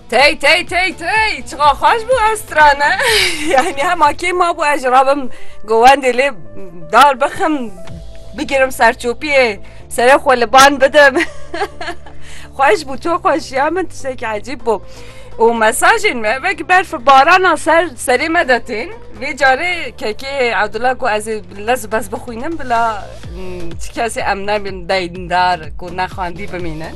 Tey tey tey tey çiqa xweş bû ez strane yani hema kê ma bû ez rabim govendê lê dar bixim bigirim serçopiyê serê xwe li ban bidim xweş bû to xweş ya min tiştekî ecîb bû û mesajên me vekî berf barana ser serê me detên vê carê kekê Abdullah ku ez lez bez bixwînim bila ti kesê em nebin deyndar ku nexwendî bimînin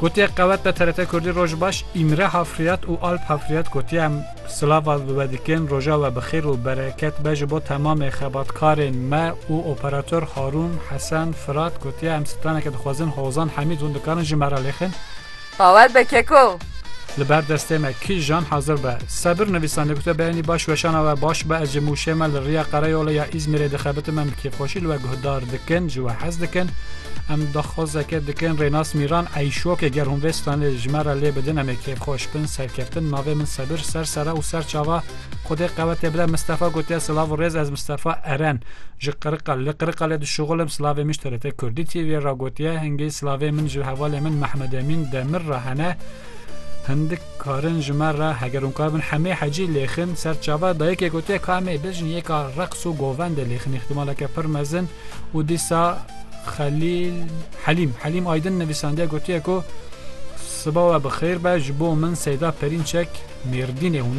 Gotiyek qewet be TRT Kurdî Roj baş, Îmre Hafriyat û Alp Hafriyat gotiye em silava li we dikin, roja we bi xêr û bereket be ji bo temamê xebatkarên me û operator Harûn, Hesen, Firat gotiye em straneke dixwezin Hozan Hemîd hûn dikarin ji me re lêxin. Bawer be keko Li ber destê me kijan hazir be. Sebir nivîsan dikute beynî baş weşana we baş be ez ji mûşê me li riya Qereyola ya Îzmîrê dixebitim em bi kêfxweşî li we guhdar dikin ji we hez dikin em daxwazeke dikin Rênas Mîran eyşokê ger hûn vê stranê ji me re lê bidin em ê kêfxweş bin serkeftin navê min Sebir ser sere û ser çava Xwedê qewete bide Mistefa gotiye silav û rêz ez Mistefa Eren ji Qiriqal li Qiriqalê dişuxilim silavê min ji TRT Kurdî TV'ê re gotiye hingî silavê min ji hevalê min Mehmed Emîn Demir re hene hindik karin ji me re heger hûn kar bin hemê hecî lêxin ser çaver dayikê gotiye ka hemê bijin yêka reqs û govendê lêxin îxtîmaleke pir mezin û dîsa Xelîl Helîm Helîm Aydin nivîsandiye gotiye ku Siba we bi xêr be ji bo min Seyda Perînçek Mêrdînê hûn